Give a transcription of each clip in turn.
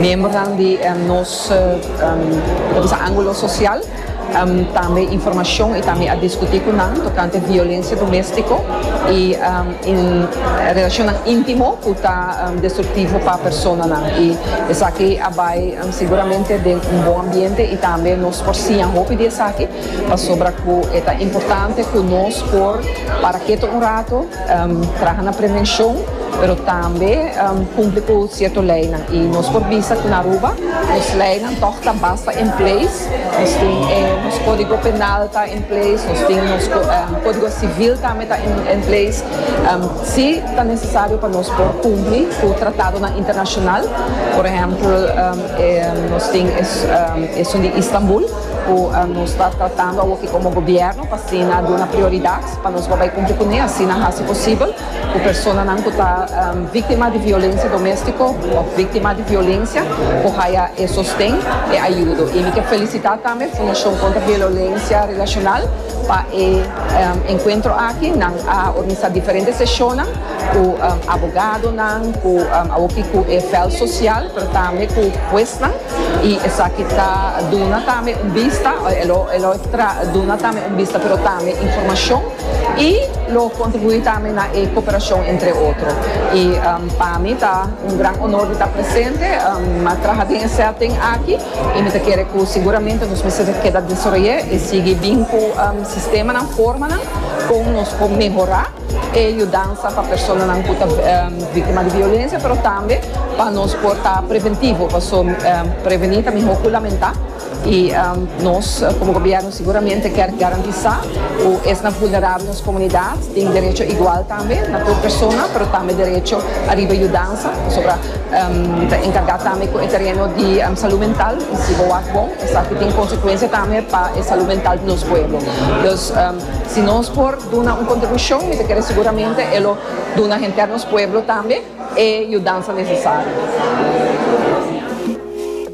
Miembernan di nos Mesa Angulo Social tambe informacion y tambe a discuti cu nan tocante violencia domestico y relacionnan intimo cu ta destructivo pa personanan. Y esaki a bay seguramente den un bon ambiente y tambe nos por siña hopi di esaki pasobra cu e ta importante cu nos por para keto un rato, traha na prevencion. Pero tambe kumpli ku sierto leinan. I nos por bisa ku na Aruba nos leinan tòg ta basta en pleis. Nos tin e nos kódigo penal ta en pleis, nos tin nos kódigo sivil tambe ta en pleis. Sí ta nesesario pa nos por kumpli ku tratadonan internashonal. Por ehèmpel, nos tin esun di Istanbul ku nos ta tratando awo'ki komo gobièrnu pa asina duna prioridat pa nos por bai kumpli kuné. Asina hasi posibel. ku personanan ku ta víktima di violensia doméstiko òf víktima di violensia por haya e sosten, e ayudo. I mi ke felisitá tambe Fundashon Kontra Violensia Relashonal pa e enkuentro aki. Nan a organisá diferente seshonnan ku abogadonan, ku awoki ku e vèlt sosial, pero tambe ku huesnan. I esaki ta duna tambe un bista, e lo e lo duna tambe un bista, pero tambe informashon y lo contribui tambe na e cooperacion entre otro y pa mi ta un gran honor di ta presente ma traha den e setting aki y mi ta kere cu seguramente nos mester ta keda desoroye y sigui bin cu sistemanan formanan con nos por mehora e yudansa pa personanan cu ta victima di violencia pero tambe pa nos por ta preventivo pasobra preveni ta mihor cu lamenta. I nos komo gobièrnu siguramente kèr garantisá ku esnan vulnerabel nos komunidat tin derecho igual tambe na tur persona, pero tambe derecho ariba yudansa. Pasobra mi ta enkargá tambe ku e tereno di salú mental i si bo wak bon esaki tin konsekuensia tambe pa e salú mental di nos pueblo. Dus si nos por duna un kontribushon mi ta kere siguramente e lo duna henter nos pueblo tambe e yudansa nesesario.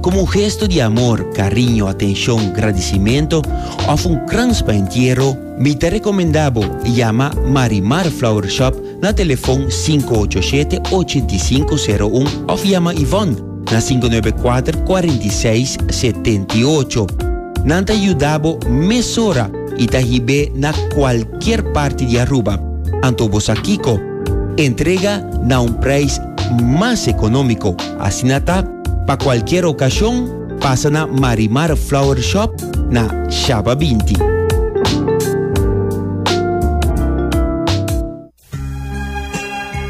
Komo un gesto di amor, kariño, atenshon, gradisimentu òf un krans pa entiero, mi ta rekomendá bo yama Marimar Flower Shop na telefòn sinku ocho shete ochenta i sinku sero un òf yama Yvonne na sinku nuebe kuater kuarenta i seis setenta i ocho. Nan ta yuda bo mesora i ta hib'é na kualkier parti di Aruba. Anto bo sa kiko? Entrega na un preis mas economico. Asina ta, pa cualkier ocasion pasa na Marimar Flower Shop na Shaba binti.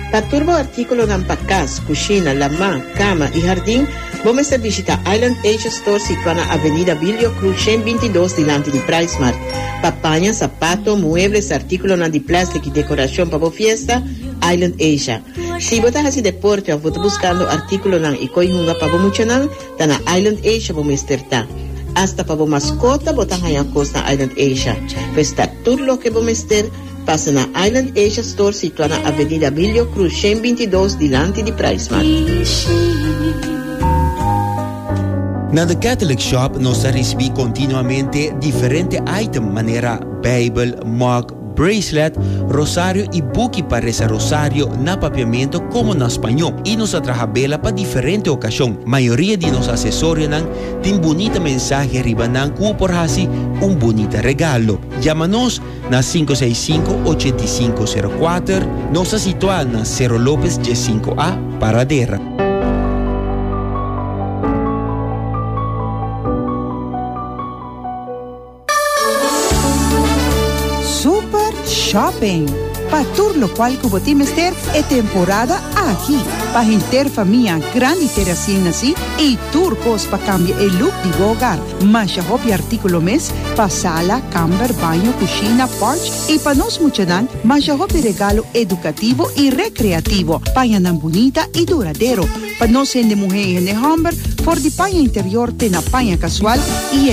Pa tur bo articulonan pa cas, cushina, lamá, cama y hardin, bo mester bishita Island Asia Store situa na Avenida Bilio Cruz shen binti dos dilanti di Pricemart. Pa paña, sapato, muebles, articulonan di plastic y decoracion pa bo fiesta, Island Asia. Si bo ta hasi deporte òf bo ta buskando artíkulonan i koi hunga pa bo muchanan, ta na Island Asia bo mester ta. Asta pa bo maskota bo ta haña kos na Island Asia. Pues ta tur loke bo mester, pasa na Island Asia Store situá na Avenida Vilio Cruz shen binti dos dilanti di Price Mart. Na The Catholic Shop nos ta risibí kontinuamente diferente item manera Beibel, mug, bracelet, rosario y buki pa reza rosario na papiamento como na spaño y nos a traha bela pa diferente ocasion. Mayoria di nos acesorianan tin bunita mensahe riba nan cu bo por haci un bunita regalo. Yama nos na sinku seis sinku ochenta i sinku sero kuater, nos ta situa na Cerro Lopez dies sinku A, Paradera. Super Shopping, Pa tur lokual ku bo tin mester e temporada aki. Pa henter famia grandi te resien nasi i tur kos pa kambia e luk di bo ogar. Masha hopi artíkulo mes pa sala, kamber, baño, kushina, pòrch i pa nos muchanan masha hopi regalo edukativo i rekreativo. Paña nan bunita i duradero pa nos hende muhé i hende hòmber for di paña interior te na paña kasual i.